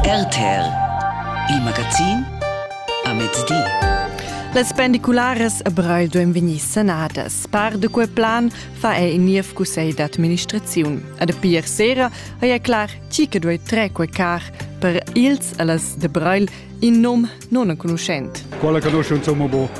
RTL, il magazin a mezdi. Les pendiculares a Breil duem vegnir sanadas. Par de quei plan fa ei in niev cussegl d'administraziun. A de pir sera ha ei clar chi che duei tre quei car per ils a las de Breil in nom non enconuschent. Quella conosce insomma bo.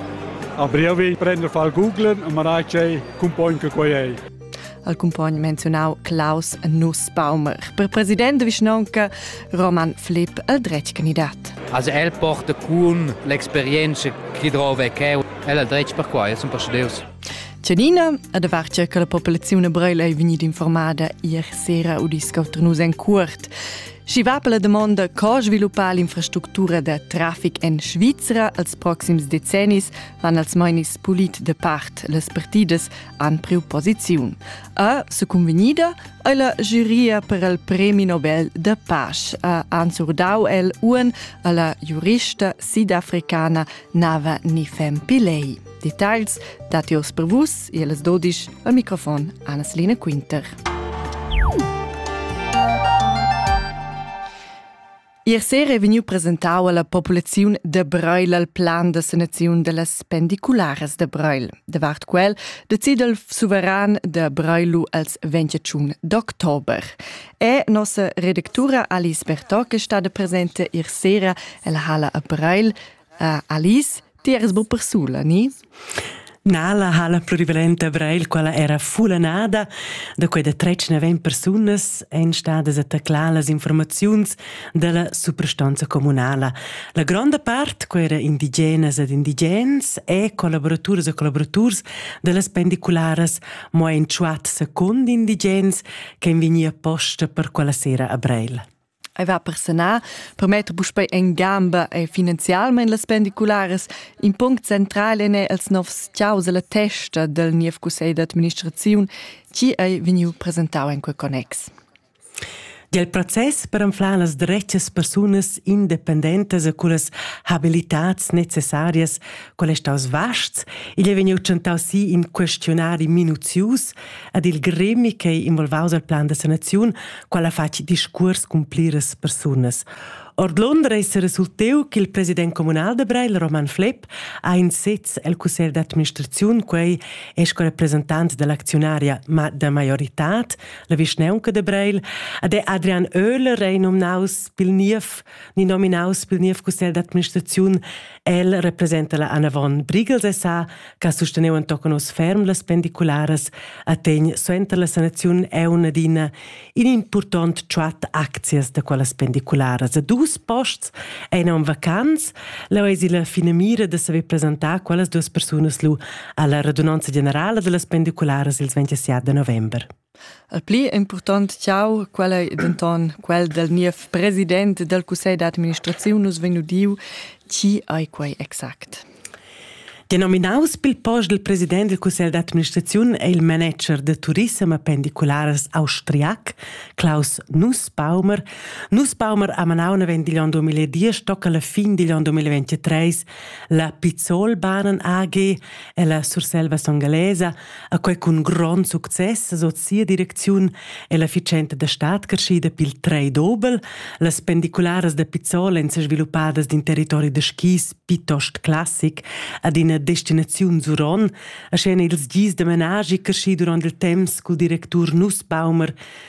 A breve prender fa il Google e marai c'ei cumpogn che quei ei. al cumpogn menziunau Klaus Nussbaumer. Per president de vischnaunca Roman Flipp el dretg candidat. Also el porta con l'experienza che drova cheu, el ha dretg per quai, sun persudeus. Tschenina, a da vartger che la popolazione breila è vegnida informada ier sera u discoter nus en cuort. Schi va per la domanda co sviluppare l'infrastruttura da traffic en Svizra als proxims decennis, van als mainis pulit de part las partidas han priu posiziun. A secunvegnida ei la giuria per il premi Nobel de pace ha ansurdau el uan alla giurista sidafricana Nava Nifem Pillei. Details datios per vus e las 12 al microfon Anna-Selina Quinter. Ier sera è vegniu presentau alla populaziun da Breil al plan da sanaziun dellas pendicularas da Breil. Davart quel decide il suveran da Breilu als 21 d'october. È nossa redactura Alice Bertò che stada presente ier sera ella hala a Breil. Uh, Alice, Ti eras bu persula, ni? Na, la hala plurivalenta Breil, quella era fulanada, da quei da tretg neven persunas ein stadas a taclar las informaziuns dalla suprastanza communala. La gronda part, quei era indigenas ed indigens e collaboraturs e collaboraturs dallas pendicularas, mo ein tschuat secund indigens che ein vegni apposta per quella sera a Breil. Ei va personal per metter puspei en gamba e finanzialmein las pendicularas. In punct central en è els novs ciaus e la testa del niev cussegl d'administraziun, chi ei vegniu presentau en quel connex. Dal process per anflar las dretgas persunas independentas e cullas habilitats necessarias, quel è staus vasts, igl è vegniu tschentau si in questionari minuzius ed il gremi ch'ei involvaus al plan da sanaziun, quella fatg discuors cun pliras persunas. Ord Londra ei seresulteu che il president communal da Breil, Roman Flepp, ha in sez el cussegl d'administraziun, quei è sco representant dell'acziunaria ma da maioritad, la vischneunca de Breil, ed è Adrian Oehler ei nominaus pil niev, ni nominaus pil niev cussegl d'administraziun, el representa la Anna von Brigels SA, che susteneu entochen oz ferm las pendicularas, attegn suenter la sanaziun eun adina in impurtont tschat aczias da quellas pendicularas. A dus posts ein en vacanz, la eisi la finamira de saver presentar quellas duas persunas lu alla radunanza generala dellas pendicularas il 27 november. Il pli impurtont tgau, quel ei denton quel dal niev president dal cussegl d'administraziun. Nus vein udiu, tgi ei quei exact. Denominaus pil post dal president dal cussegl d'administraziun è il manager da turissem e pendiculares austriac, Klaus Nussbaumer. Nussbaumer ha manau naven digl onn 2010 tocca la fin digl onn 2023 la Pizzolbahnen AG e la Surselva Songalesa a quei cun grond success sot sia direcziun e la efficienta da stat creschida pil trei dobel, las pendicularas da Pizzol ein sviluppadas d'in territori da skis piuttost classic ad ina destinaziun zuron, aschien ils gis da menagi creschi durant il temps cul directur Nussbaumer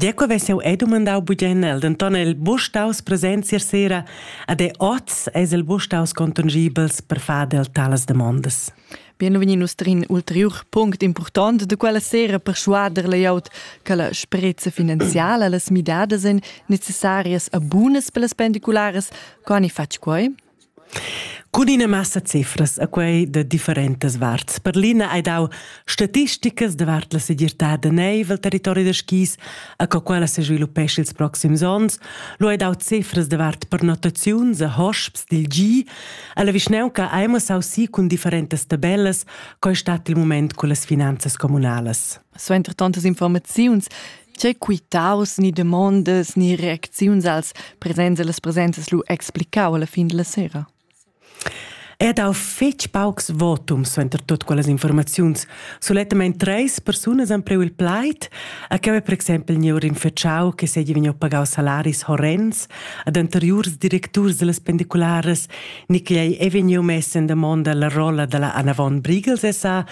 Deco ves'jeu ei dumandau bugen el, denton el buc staus presents ier sera ad e oz eis el buc staus contongibels per far del talas demondas. Bienvegni nus trin ulteriur punct impurtont de quella sera per schuader layout che la sprezza finanziala, las midadas ein necessarias a bunas per las pendiculares, co han i fatg quei? Cun ina massa cifras a quei da differentas varts. Per l'ina hai dau statisticas davart la segirtad da neiv al territori da skis, a co quella sesviluppescha ils proxims onns. Lu hai dau cifras davart pernottaziuns a hosps dil gi. Alla vischnaunca hai mo sausi cun differentas tabellas, co ei stat il mument con las finanzas communalas. Suenter tantas informaziuns tgei quitaus ni demondas ni reacziuns als presents e las presentas lu explicau alla fin della sera? È dau fetg paucs votums suenter tut quellas informaziuns. Sulettamain treis persunas han preu il plaid, a che per exempel Niur Infecciau, che seigi vegniu pagau salaris horrens ad anteriurs directurs dellas pendicularas, ni che ei ei vegniu mess en damonda la rolla dalla Anna von Briegel SA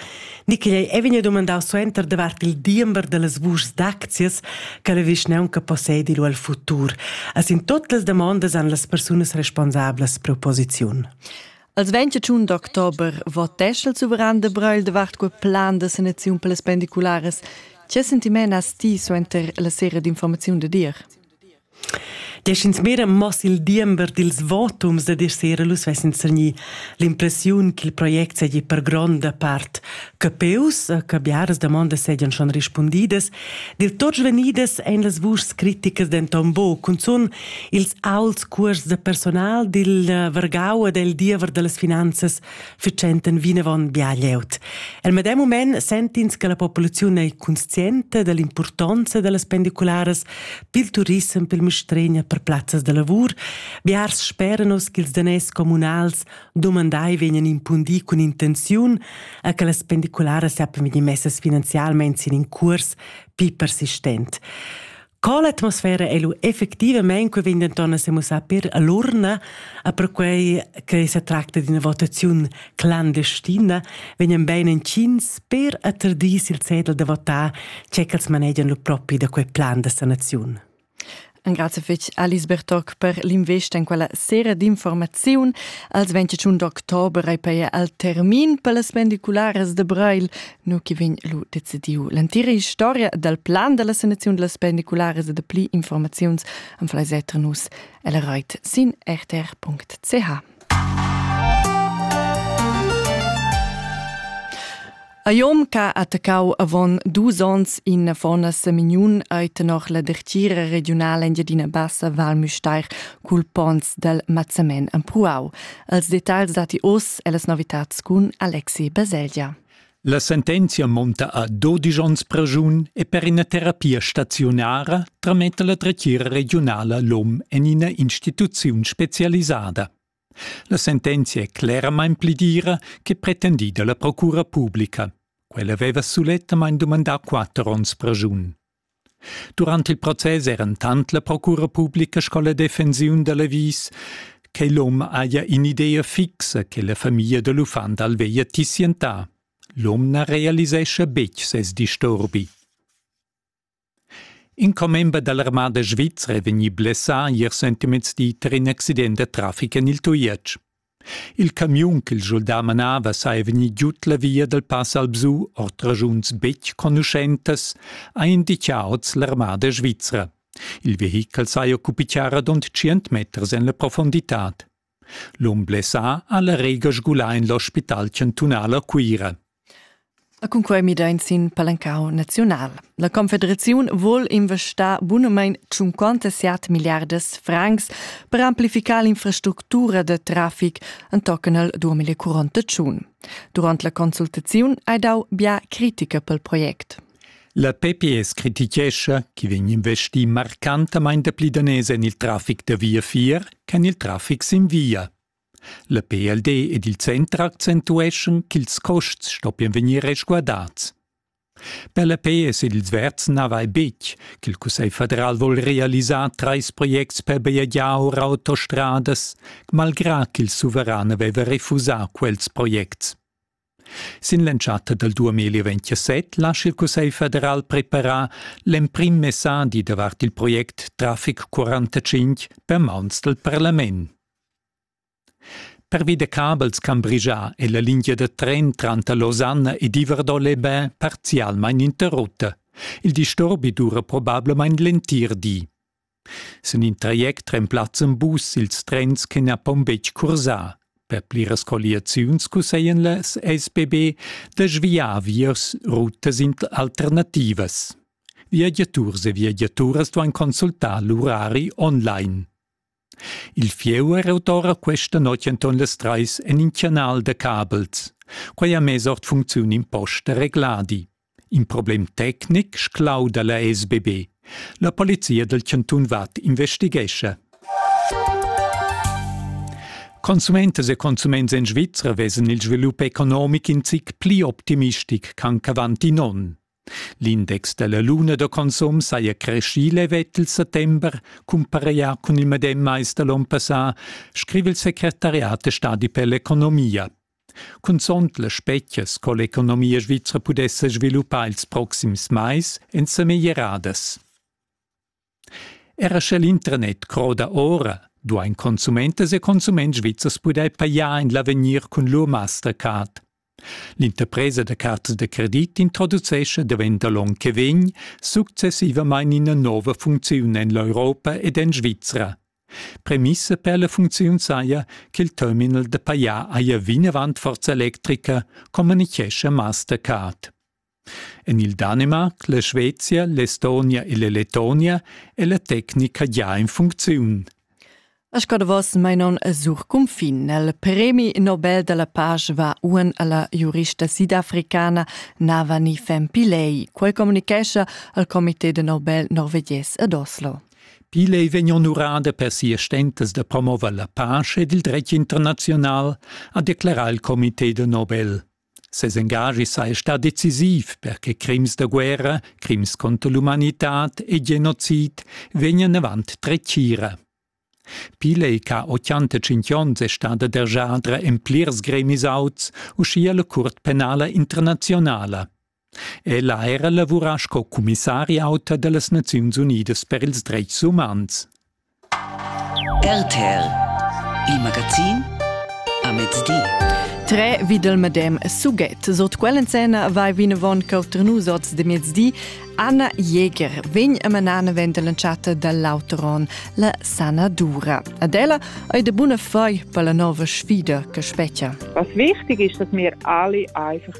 Nicolai è vegni domandau suenter davart il diember dallas vuschs d'aczias che la vischnaunca possedi lu al futur. As in tutte le domande an las persunas responsablas proposiziun. Als 21 d'october votesce il suveran de Brühl davart quel plan de sanazione per le spendiculares. Che sentiment has ti suenter la sera d'informazione de dir? Desch'ins mira moss il diember dils votums dad ir sera lu svessin sagnì l'impressiun ch'il project seigi per gronda part capeus, che biaras damondas seigien schon rispundidas. Dil tot svenidas ein las vuschs critikas denton buc, cunzun ils aults cuors da personal dil vargau e del diever dallas finanzas fitschenten vinavon bia glieud. El medem mument sentins che la populaziun ei conscienta dell'impurtonza dellas pendicularas pil turissem, pil mistregna per plazzas de lavur. Biars sperenos che ils danès communals domandai vegnan impundi cun intenziun a che las pendicularas sappian vegnir messas finanzialmein sin in cuors pli persistent. Co l'atmosfera è lu effectivamein che vegn denton a semussar per all'urna, a perquei che se tracta d'una votaziun clandestina, vegnan bein entschins per atterdir il zettel da votar, c'è ch'els manegian lu propi da quei plan da sanaziun. Grazie fetg Alice Bertoc per l'investa in quella sera d'informaziun. Als 28 d'october ei per al termin per las pendiculares de Breil nu chi vegn lu decidiu. L'entira historia dal plan della sanazione delle pendiculares e de pli informaziuns am flai setter nus el reit sin rtr.ch. A Jom ca attaccau avon dus ons in fona semignun ait noch la dertiera regionala Engiadina Bassa Val Müstair cul pons del Mazzamen Ampuau. Els detagls dati os e las novitats cun Alexi Baselgia. La sentenzia monta a dodisch onns praschun e per ina terapia staziunara trametta la dretgira regiunala l'om en ina instituziun specialisada. La sentenzia è cleramain pli dira che pretendida la procura publica. Quella aveva sulettamain dumandà quatter onns praschun. Durant il process eran tant la procura publica sco la defensiun da l'avis che l'hom haja in'idea fixa che la famiglia da l'uffant al veglia tissientar. L'hom na realisescha betg ses disturbi. In commember da l'armada svizra è vegnì blessà ier sentimezdi tar in accident da traffic en il Tujetsch. Il camiun ch'il schuldà manava saja vegnì giud la via dal Pass Alpsu ord raschuns betg conuschentas, ha inditgà oz l'armada svizra. Il vehichel saja occupì charadond tschient meters en la profunditad. L'um blessà ha la rega sgulà en l'ospital chantunal a Cuira. E cun quei midein sin palancau naziunal. La Confederaziun vuol investar bunamein 57 milliardas francs per amplificar l'infrastructura de trafic entochen al 2041. Durant la consultaziun hai dau bia critica pel project. La PPS critichescha, che vegn investì marcantamain dapli daners en il traffic da viafier ch'en il traffic sin via. La PLD ed il center accentueschan ch'ils custs stoppien vegnir resguardats. Per la PS ed ils Verds na vai betg ch'il Cussegl federal vul realisar trais projects per bajegiar or autostradas, malgrà ch'il suveran aveva refusà quels projects. Sin l'entschatta dal 2027 lascha il Cussegl federal preparar l'emprim messadi davart il project Traffic 45 per mauns dal parlament. Pervi da cabels Cambridgia è la linea da tren tranter Losanna ed Iverdon-les-Bains parzialmain interrutta. Il disturbi dura probablamain l'entir di. Sin in traject remplazzan bus ils trens che na pon betg cursar. Per pliras colliaziuns cusseglian las SBB da sviar viers rutas alternativas. Viagiaturs e viagiaturas duan consultar l'urari online. Il fieu è autora questa notg enton las treis en in canal da cabels. Quai ha mess ord funcziun imposta regladi. In problem tecnic sclauda la sbb. La polizia dal chantun Vad investighescha. Consumentas e consuments en Svizra vesan il svilup economic in zic pli optimistic ch'anc avant in onn. L'index della luna da consum saja creschì levet il settember, cumpareglià cun il medem mais da l'onn passà, scrive il secretariat de stadi per l'economia. Cunzont las spetgas co l'economia svizra pudesse sviluppar ils proxims mais èn sa meglieradas. Era sche l'internet croda ora, duain consumentas e consuments svizzers pudair pajar en l'avegnir cun lur Mastercard. L'interpresa da cartas da credit introducescha davent da l'onn che vegn successivamain ina nova funcziun en l'Europa ed en Svizra, Premissa per la funcziun saja ch'il terminal da pajar haja vinavant forza electrica, communichescha Mastercard. En il Danemarc, la Svezia, l'Estonia e la Lettonia è la tecnica già in funcziun. A Scadavos mainon a sur cunfin. Il premi Nobel della pace va uan alla giurista sidafricana Navani Fempilei. Quel comunicescha al Comité de Nobel norvegies ad Oslo. Pil ei vegn honorada per sias stentas da promover la pace ed il dretg internaziunal, ha declarau il comité de Nobel. Ses engagi sei stà decisiv per che crims da guerra, crims contro l'umanitad e genocid vegnan avant tretgira. Pil ei ca 85 onns è stada dergiadra en plirs gremis auts, uschia la Curt penala internazionala. Ella ha era lavurà sco cumissari auta da las Naziuns Unidas per ils dretgs umans. RTL, il magazin a mezdi. Tre videl medem suget. Sot quell'encena vai vinavon cautrnus oz de mezdi Anna Jäger vegn a manana ventelanciata dall'Auteron, la sana dura. Ad ella ei de buna fai per la nova sfida che spettia. Was wichtig ist, dass wir alle einfach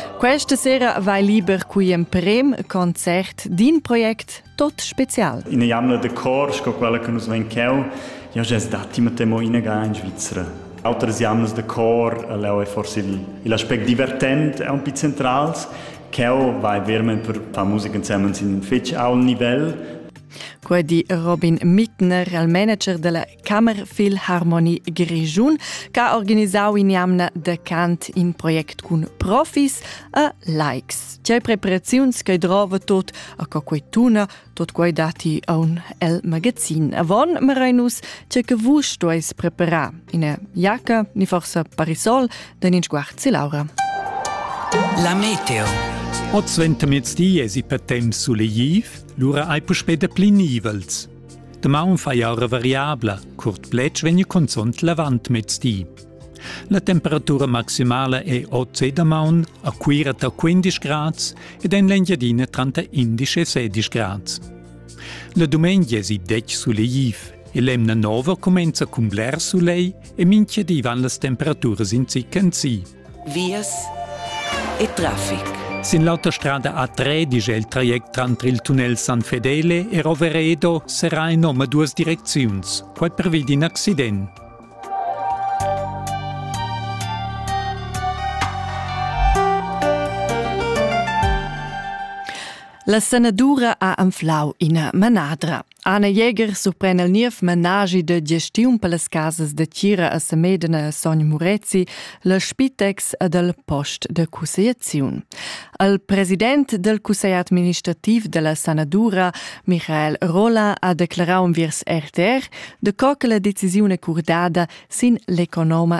Questa sera vai liber qui emprem concert d'in project tot special. In jamna de cor, sco quella che nus ven cheu, ja ges datti mit mo ina ga in Svizzera. Outras jamnas de cor, leu è forse il, il aspect divertent è un po' centrals, cheu vai vermen per far musica insieme in fetg aul nivel, Quei di Robin Mittner, il manager della Kammerfil Harmonie Grischun ch'ha organisau in'jamna da cant in project cun profis e likes. Tgei preparaziuns che drova tot a co quei tuna, tot quei dati aun el magazin. Avon Marainus, tgei che vus stueis preparar ina giacca, ni forse parisol, den in sguarzi Laura. La Meteo. Hoz ventemezdi esi per temps sulegliv, lura hai puspè da pli nivels. Damaun faia era variabla, curt plec vegni cunzont l'avant mezdi. La temperatura maximala è oz damaun a Cuira ta 15 grads ed en l'Engiadina tranter 11 e 16 grads. La dumengia è si dec suleiv e l'emna nova cumenza cun bler sulei e minchia divan las temperaturas in zic en si. vias e traffic. Sin l'auta strada A3 dice il traject tranter il tunnel San Fedele e Roveredo serà in nome duas direcziuns, quai pervi d'in accident. La sanadura ha anflau ina manadra. Anna Jäger surpren el niev menaschi de gestiun per las casas de Tira a Semedene e Sogn Murezi, le Spitex ed el post de cussegliaziun. Al president del cussegl administrativ della sanadura, Michael Rola, ha declarau enviers RTR de co che la decisione curdada sin l'economa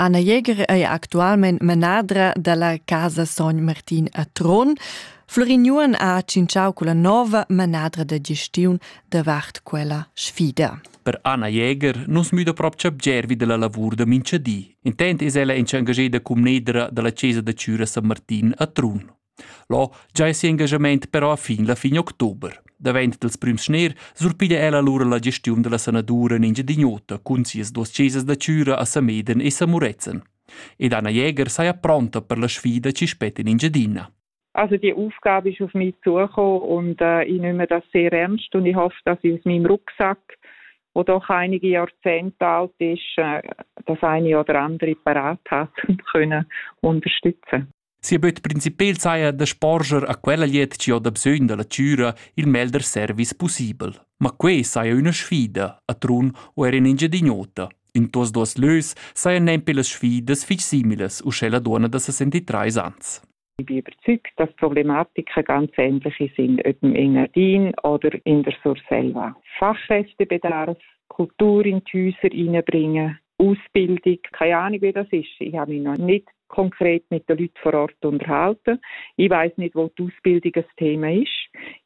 Anna Jäger ei actualmein manadra dalla Casa Sogn Martin a Trun. Flurin Juon ha tschintschau culla nova manadra da gestiun davart quella sfida. Per Anna Jäger nus müda propcha bgervi della lavur da mincha di. Intent es ella enchangeda cum nedra dalla Chesa da Chüra San Martin a Trun. Là giai si engagament però a fin la fin october. Davent dals prüms schner surpiglia ella lura la gestiun da la sanadura in Engiadin'Ota cun sias duos chesas da chüra a Sameden e Samurezen. Ed Anna Jäger saja pronta per la sfida chi spet in Engiadina. Also die Aufgabe ist auf mich zugekommen und äh, ich nehme das sehr ernst und ich hoffe, dass ich aus meinem Rucksack, der doch einige Jahrzehnte alt ist, äh, das eine oder andere parat hat und können unterstützen. Sia böt principel saja da sporger a quella glied chi ho da bsögn da la chüra il melder service pussibel. Ma quei saja üna sfida a Trun o er in Engiadin'Ota. In tuos duos lös sajan nempe las sfidas fich similas uschè la duonna da 63 ans. Ich bin überzeugt, dass Problematiken ganz ähnliche sind, ob im Engadin oder in der Surselva. Fachkräftebedarf, Kultur in die Häuser hineinbringen, Ausbildung, keine Ahnung, wie das ist. Ich habe mich noch nicht konkret mit den Leuten vor Ort unterhalten. Ich weiß nicht, wo die Ausbildung ein Thema ist.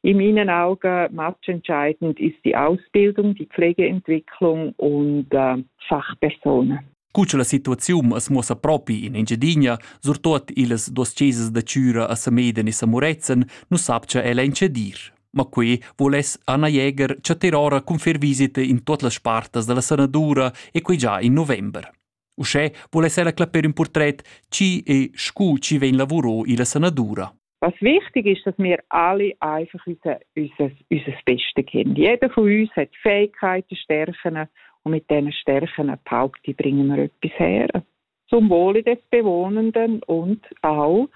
In meinen Augen matchentscheidend ist die Ausbildung, die Pflegeentwicklung und äh, Fachpersonen. Cu la situaziun as muossa propi in Engiadina, surtot illas dos chesas da Chüra a Sameden e Samuretzen, nu sapcha ella incedir. Ma quei voless Anna Jäger chatter ora cun fer visita in tot las spartas dalla sanadura e quei già in november. Uschè voless ella clapper in portret chi e scu chi vegn lavuro illa sanadura. Was wichtig ist, dass wir alle einfach unser, unser, unser Bestes können. Jeder von uns hat Fähigkeiten, Stärken und mit diesen Stärken, behaupte ich, bringen wir etwas her. zum Wohle des Bewohnenden und auch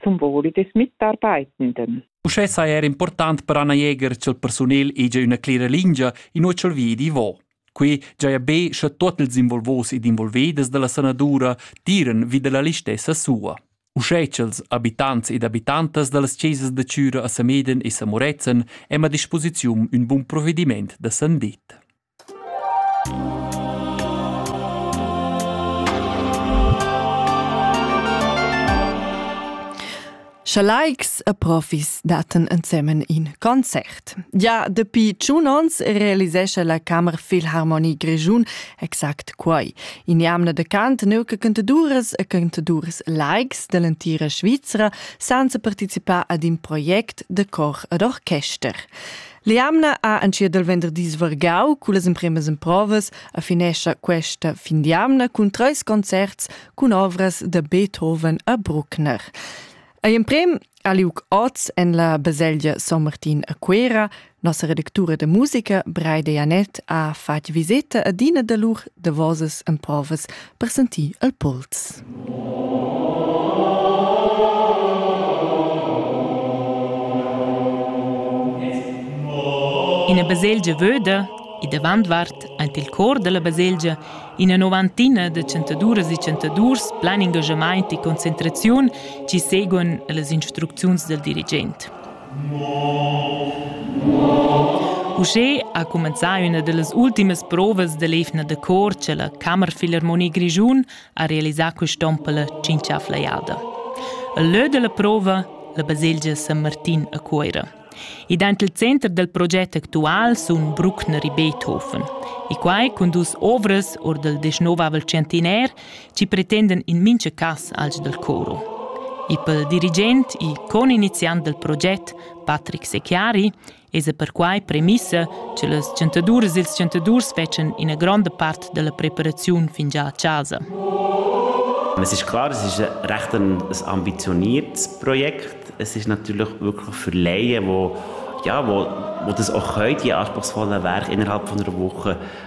zum Wohle des Mitarbeitenden. Uschè saja er important per Anna Jäger ch'el persunel ega üna clera lingia in uochel vi di vo. Qui giaja be sche tot ils involvos ed involvedes dalla sanadura tiran vi della listessa sua. Uschè ch'els abitants ed abitantas dallas chesas da Cüra a Sameden e Samorezen hem a disposiziun ün bun provvediment da san dit. Scha laics e profis dattan ensemen in concert. Già dapi tschun ons realisescha la Camera Philharmonie Grischun exact quai. In jamna de cant neu che cantaduras e cantaduras laics dall'entira Svizra senza participar ad in project de cor ed orchester. L'jamna ha entschiet il venderdis vargau cullas empremas emprovas a finescha questa fin d'jamna cun treis concerts cun ovras da Beethoven a Bruckner. Ei emprem ha liug oz en la baselgia San Martin a Cuera. Nossa redactura de musica, Breide Janet, ha fatg viseta ad ina da lur davosas emprovas presentì al Pols. Ina baselgia vöda e davant vart ant il cor della baselgia ina novantina de chantaduras e chantadurs plan engagement e concentraziun ci seguon las instrucziuns del dirigent. Uschè ha cumenzà üna da las ultimas provas da l'eivna da cor cha la Kammerphilharmonie Grischun ha realisà quist'on la tschinchafla jada. Il lö da la prova, la baselgia San Martin a Cuoira. E dant il center del proget actual sun Bruckner e Beethoven. E quai cun dus ovras or del desnovavel centinair ci pretenden in mincha cas als del coro. E pel dirigent e coniniziant del proget, Patrick Secchiari, esa perquai premissa che les chantaduras e ils chantadurs fecen ina gronda part della preparaziun fingià a casa. Es ist klar, es ist recht ein, ein ambitioniertes Projekt. Es ist natürlich wirklich für Laien, wo, ja, wo, wo das auch können, die anspruchsvollen Werke innerhalb von einer Woche